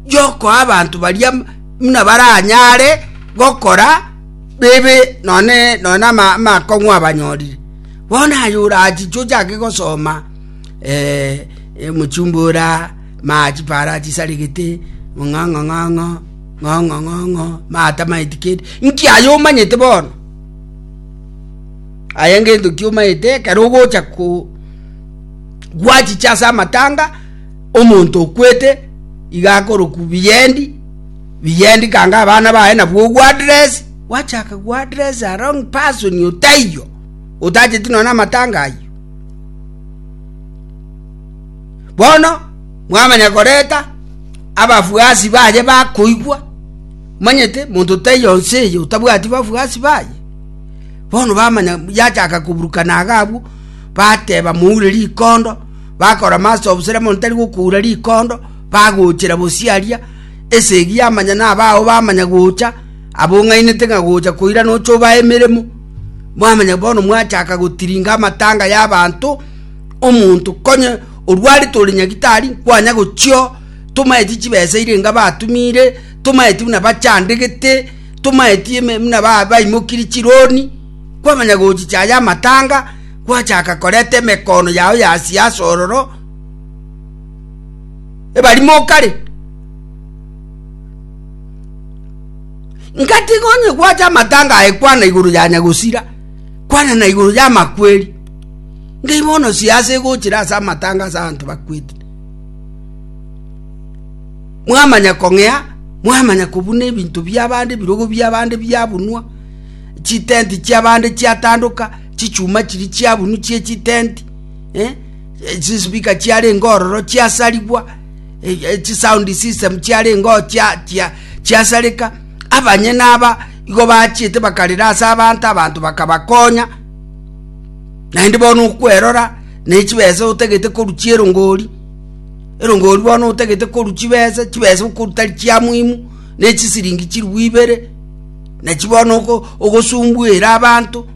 y'okoa abanto baria buna baranyare gokora bibe nonye nonye amakong'u abanyorire. Bono aye orachiche ochake gosoma mochumbora, mache para achisaregete, ng'ong'o ng'ong'o, ng'ong'o ng'ong'o, matamaeti kende, nki aye omanyete bono? Aye ngento ki omanyete ekero ogocha ko gwachiche ase amatanga. Omonto okwete iga akorokwa Biyendi, Biyendi kanga abana baye nabwo Guadres, gwachaka Guadres along person otaiyo, otacheti nonya namatanga ayio. Bono mwamanya koreta abafuasi baye bakoigwa, manyete monto taiyo nse eye otabwati bafuasi baye. Bono bamanya yachaka koburukana agabwo, bateba moure rikondo, bakorama ase obosera mono tari gokuura rikondo, bagochera bosio aria, esegi yamanya na abao bamanya gocha, abong'ainete ng'a gocha koira nocha obae emeremo. Mwamanya bono mwachaka gotiringa amatanga y'abanto, omonto konye orwarete ore nyagitari nkwanya gochio, tomaeti chibesa ire enga batumire, tomaeti buna bachandegete, tomaeti eme buna ba- baimokiri chironi, kwamanya gochicha aye amatanga, Gwachaka koreta emekoono yao yasia ase ororo, ebarimo okare. Ngatiga onye gwacha amatanga aye kwana igoro ya nyagosira, kwana na igoro ya amakweri. Ngai bono siasa egochira ase amatanga ase abanto bakwete. Mwamanya kong'ea, mwamanya kobuna ebinto biabande, ebirogo biabande biabunwa, chitenti chiabande chiatandoka, chichuma chiria chiabunu chie chitenti, eh, chispeaker chiarenge ororo chiasarigwa, eh, eh, chisound system chiarenge oo chia- chia- chiasareka abanyene aba igo bachiete bakarera ase abanto abanto bakabakonya naende bono okwerora ne chibesa otagete koruchia erongori erongori bono otagete korwa chibesa chibesa okoru tari chia muhimu ne chisiringi chirigwa ibere nachi bono ogo- ogosumbuere abanto.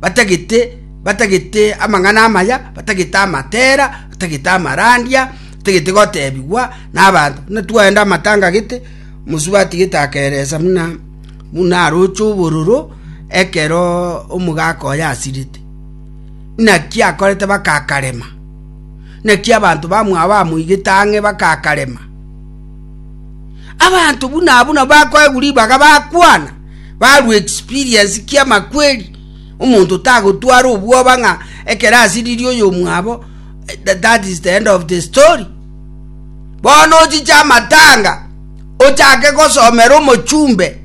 batagete, batagete amang'ana amaya, batagete amatera, batagete amarandia, batagete gotebigwa n'abanto. Buna twaenda amatanga gete, mosubati gete akeresa buna buna aroche obororo ekero omogaka oye asirete. Naki akorete bakakarema, naki abanto bamwabo bamoigete ang'e bakakarema. Abanto buna abwo nabo bakoegwa ribaga bakwana. barue experience ki'amakweri, omonto tagotwara obwoba ng'a ekero asiriri oyomwabo that is the end of the story. Bono ochiche amatanga ochake gosomera omochumbe,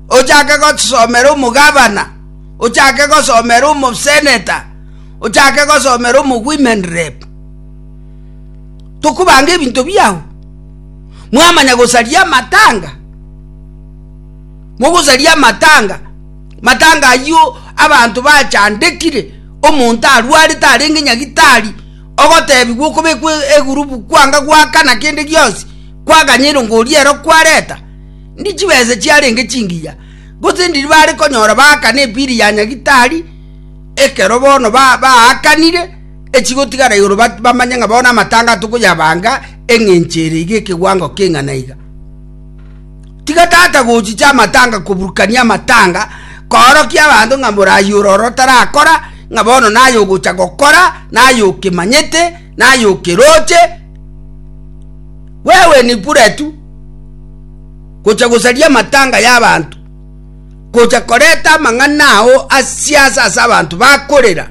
ochake gosomera omogabana, ochake gosomera omoseneta, ochake gosomera omowomen rep. Tokobanga ebinto biao. mwamanya gosaria amatanga mogosaria amatanga matanga ayio abanto bachandekire omonto arwarete arenge nyagitari ogotebigwa okobekwa egurubu kwanga gwakana kende gionsi kwaganya erongo oria ero kwareta ndi chibesa chiarenge chingiya gose ndiri bare konyora baakana epiri ya nyagitari ekero bono baakanire ba echigotigara igoro bamanye ng'a bono amatanga tokoyabanga engencho ere iga ekeguango keng'ana iga. Tiga tata gochicha amatanga koburukania amatanga koorokia abanto ng'a morayi ore ore otarakora ng'a bono naye ogocha gokora naye okemanyete naye okeroche wewe ni bure tu gocha gosaria amatanga y'abanto gocha koreta amang'ana ao asiasa ase abanto bakorera